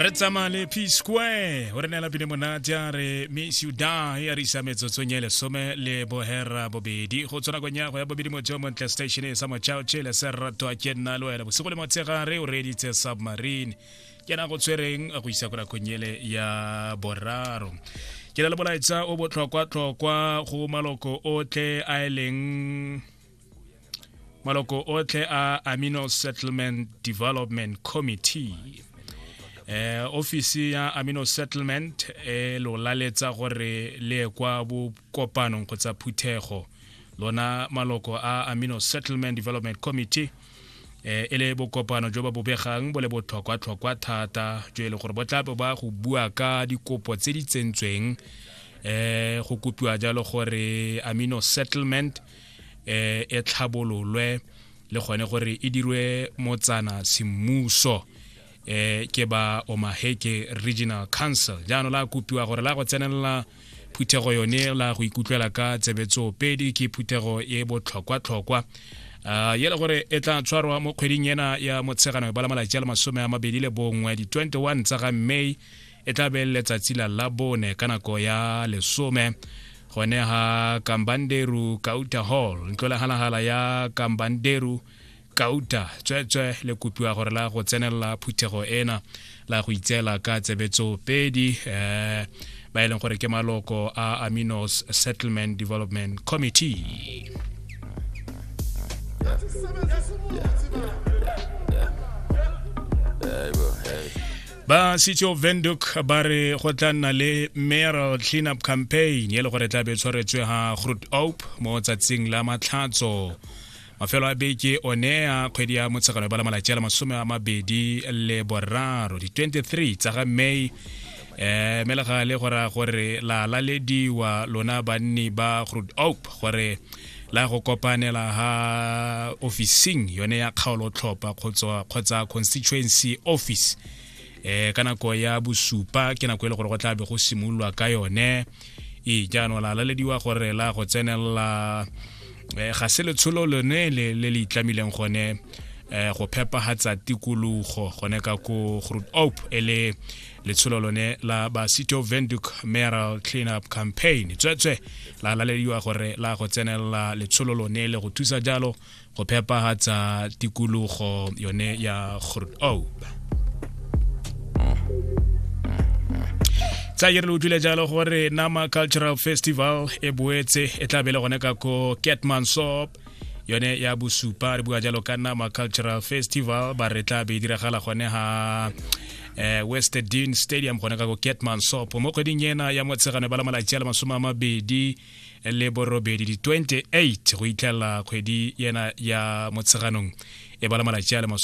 re tsamaya le p square o re neela pine monate a re miss you die a re isa metsotsong e lesome le bohera bobedi go tswa nakong ya go ya bobedi motho yo montle station e sa mochaoche le se ratwa ke nna le wena bosigo le motshegare o reeditse submarine ke na go tshwereng go isa ko nakong ele ya boraro ke na le molaetsa o botlhokwa-tlhokwa go maloko otlhe a e leng maloko otlhe a amino settlement development committee eh ofisi ya amino settlement e lo laletsa gore le kwa bokopanong kgotsa phuthego lona maloko a amino settlement development committee eh e le bokopano jo ba bobegang bo le botlhokwa-tlhokwa thata jo e leng gore bo tla bo ba go bua ka dikopo tse di tsentsweng eh go kopiwa jalo gore amino settlement eh, e tlhabololwe le gone gore e dirwe motsana semmuso eh ke ba omaheke regional council jaanong la kopiwa gore la go tsenelela phuthego yone la go ikutlwela ka tsebetso pedi ke phuthego e botlhokwa-tlhokwa Uh, ye le gore e tla tshwarwa mo kgweding ena ya motshegano ba la malatsi a le masome a mabedi le bongwe di-21 tsa ga may e tla be letsatsi la labone ka nako ya lesome gone ga kambanderu kauta hall ntlo legalagala ya kambanderu kauta tsweetswe le kopiwa gore la go tsenelela phuthego ena la go itseela ka tsebetso pedi um ba e leng gore ke maloko a aminos settlement development committee yeah. ba city of venduk ba re go tla nna le mayoral cleanup campaign e le gore tla be tshwaretswe ga groot op mo tsatsing la matlhatso mafelo a beke one a kgwedi ya motshegano ba la malatsi a le masome a mabedi le boraro di-23 tsa ga may eh me le gale gore gore la lalediwa lona banni ba groot op gore la go kopanela ha officing yone ya kgaolotlhopha kgotsa constituency office eh ka nako ya bosupa ke nako e le gore go tla be go simololwa ka yone e jaanong la lalediwa gore la go tsenelela eh, ga se letsholo lone le le itlamileng gone eh, go phepagatsa tikologo gone ka ko groot op e le letsholo lone la basito venduk mayoral cleanup campaign tswetswe la lalediwa gore la go tsenelela letsholo lone le go thusa jalo go phepagatsa tikologo yone ya grot oak tsa ke re le utlwile jalo gore nama cultural festival e boetse e tla bele gone ka ko catmansop yone ya bosupa re bua jalo ka nama cultural festival ba re tla be diragala gone ha eh, west dean stadium gone ka go ketman sop mo kgweding ena ya motshegano ba la malatsi a le masome a mabedi le borobedi di-28 go itlhelela kgwedi yena ya motsheganong e ba la malatsi a le